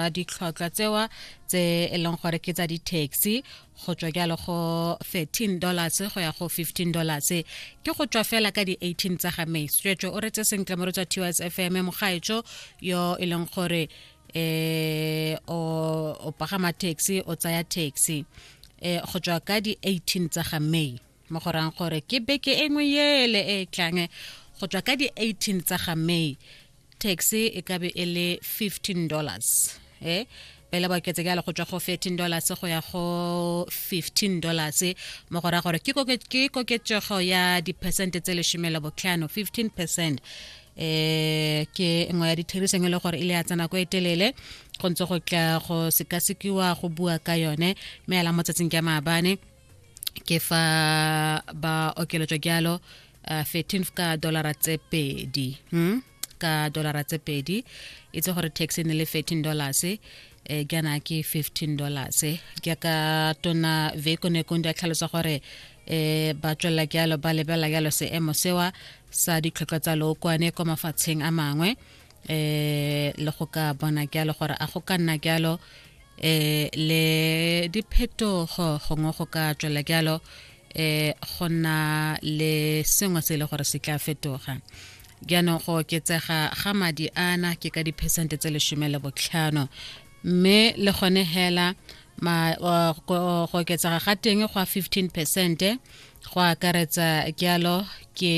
ditlhotlhwa tsewa tse e leng gore ke tsa di-taxi go tswa jalo go 13 dollars go ya go 15 dollars ke go tswa fela ka di-18 tsa ga may tswetswe o retse sentle mo re tswa ts f m mogaetso yo e leng gore eh o pagama taxi o tsaya taxi eh go tswa ka di-18 tsa ga may mo go rang gore ke beke e nngwe ele e e tlang go tswa ka di-18 tsa ga may tax e ka be e le 15 dollars e pele ba oketse jalo go tswa go 13 dollars go ya go 15 dollars mo go raya gore ke koketsego ya diphesente tse lesome le botlhano 15 percent eh ke nngwe ya ditheriseng e le gore e le ya tsena ko e telele go ntse go tla go sekasekiwa go bua ka yone mme ala motsatsing ke maabane ke fa ba okeletswa jalo uh, 13 ka dollara tse pedi hmm? ka dollara tse pedi itse gore tax e ne le 13 dollars e eh, jaana ke 15 dollars jaaka tona veko ne kondi a tlhalosa gore eh ba tswela jalo ba lebela jalo seemo sewa sa ditlhotlwa tsa lookwane kwa mafatsheng a mangwe eh le go ka bona jalo gore a go ka nna jalo eh le diphetogo gongwe go ka tswela jalo eh go na le sengwe se e le gore se tla fetoga jaanong go oketsega ga madi ana ke ka diphesente tse lesome le botlhano mme le gone hela ma uh, go oketsega ga teng go a 15 percent go akaretsa jalo ke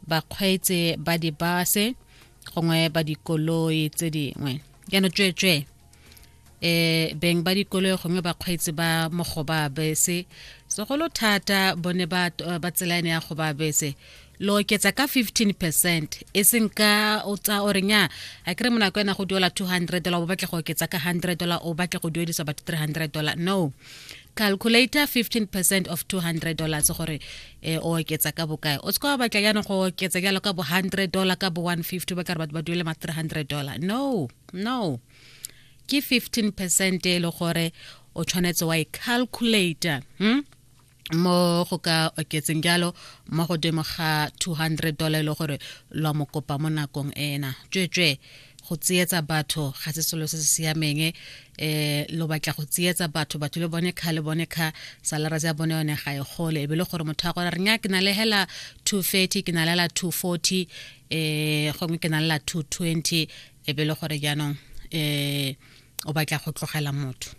bakgweetsi ba dibase gongwe ba dikoloi tse dingwe jaanong tsweetswee eh beng ba dikolo gongwe bakgweetsi ba mogoba bese segolo thata bone ba ba tselane ya goba bese lo oketsa ka 15 percent e seng ka o tsa o renya a kere monako ena go duela 200 dollar o batla go oketsa ka 100 dollar o batla go duedisa batho 300 dollar no calculator 15 percent of 200 dollars gore eh, o oketsa ka bokae o tseka wa batla jaanong go oketsa jalo ka bo 100 dollar ka bo 150 ba kare batho ba duele ma 300 dollar no no ke 15 percent e le gore o tshwanetse wa e calculator hmm? mo go ka oketseng jalo mo godimo ga 200 dollar e le gore lwa mokopa mo nakong ena tswetswe go tsietsa batho ga se selo se se siameng eh lo batla go tsietsa batho batho le bone kha le bone kha salara ya bone yone ga e gole e be le gore motho a gore re nya ke na le hela 230 ke na le la 240 eh gongwe ke na le la 220 e be le gore jaanong eh o batla go tlogela motho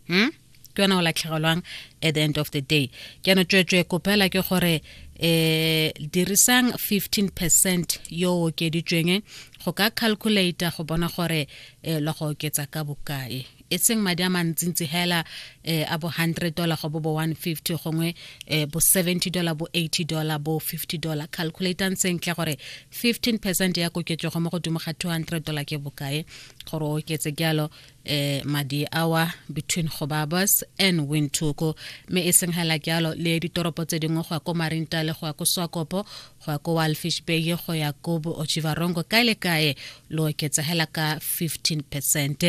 hm ke yona o latlhegelwang at the end of the day ke yana tswetswe kopela ke gore eh dirisang 15 percent yo okeditsweng go ka calculator go bona gore eh lo go oketsa ka bokae e seng madi a mantsintsi hela eh, a bo 100 dollar go bo bo 150 gongwe eh, bo 70 dollar bo 80 dollar bo 50 dollar calculator sentle gore 15 percent ya koketsego mo godimo ga 200 dollar ke bokae gore o oketse jalo eh madi awa between gobabos and wintoko mme e seng hela jalo le ditoropo tse dingwe go ya ko marinta le go ya ko swakopo go ya ko walfish bay go ya ko ochivarongo kae le kae lo oketsegela ka 15 percent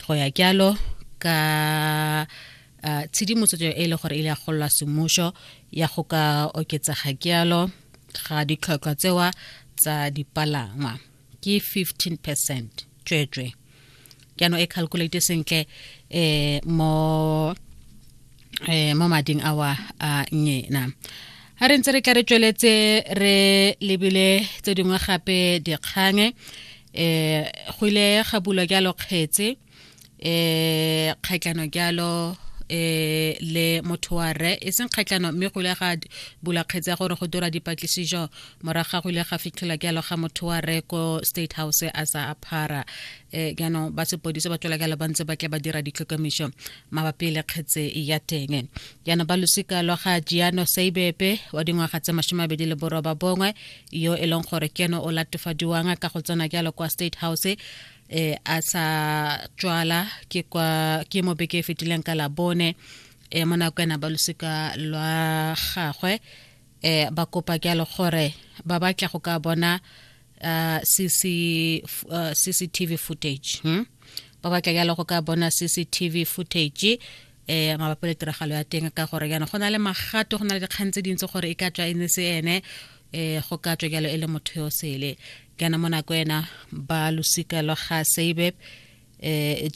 go ya jalo ka uh, tshedimotso e le gore e le ya gololwa semmušo ya go ka oketsega jalo ga ditlhotlhwa tsewa tsa dipalangwa ke 15 percent tsweetswe jaanong e calculate sentle eh mo eh mo mading awa a nyena a re ntse re tla re tsweletse re lebile tse dingwe gape dikgange eh go ile ga bulwa jalo kgetse eh kgaitlano jalo eh le motho wa re e seng kgaitlano mme go ile ga bula kgetse ya gore go dira dipatlisiso morago ga go ile ga fitlhela jalo ga motho wa re ko state house a sa aphara um jaanong ba sepodise ba tswela jalo ba ntse ba tle ba dira ditlhokomiso mabapi le kgetse ya teng jaanong ba losika lwa ga jiano saibepe wa dingwaga tse masome abedi le boroba bongwe yo e leng gore keno o latofadiwang ka go tsena jalo kwa state house eh a sa tswala ke kwa ke mo beke e fetileng ka labone eh mo nako ena ba losika lwa gagwe eh ba kopa ke le gore ba batla go ka bona uh, CC, uh, CCTV footage hmm? ba batla ke le go ka bona CCTV footage eh mabapo le tiragalo ya teng ka gore yana go na le magato go na le dikgang tse dintsi gore e ka tswa e ne se ene eh go ka tswa jalo e le motho yo sele kana mo nako ena ba losika lwa ga seibe eh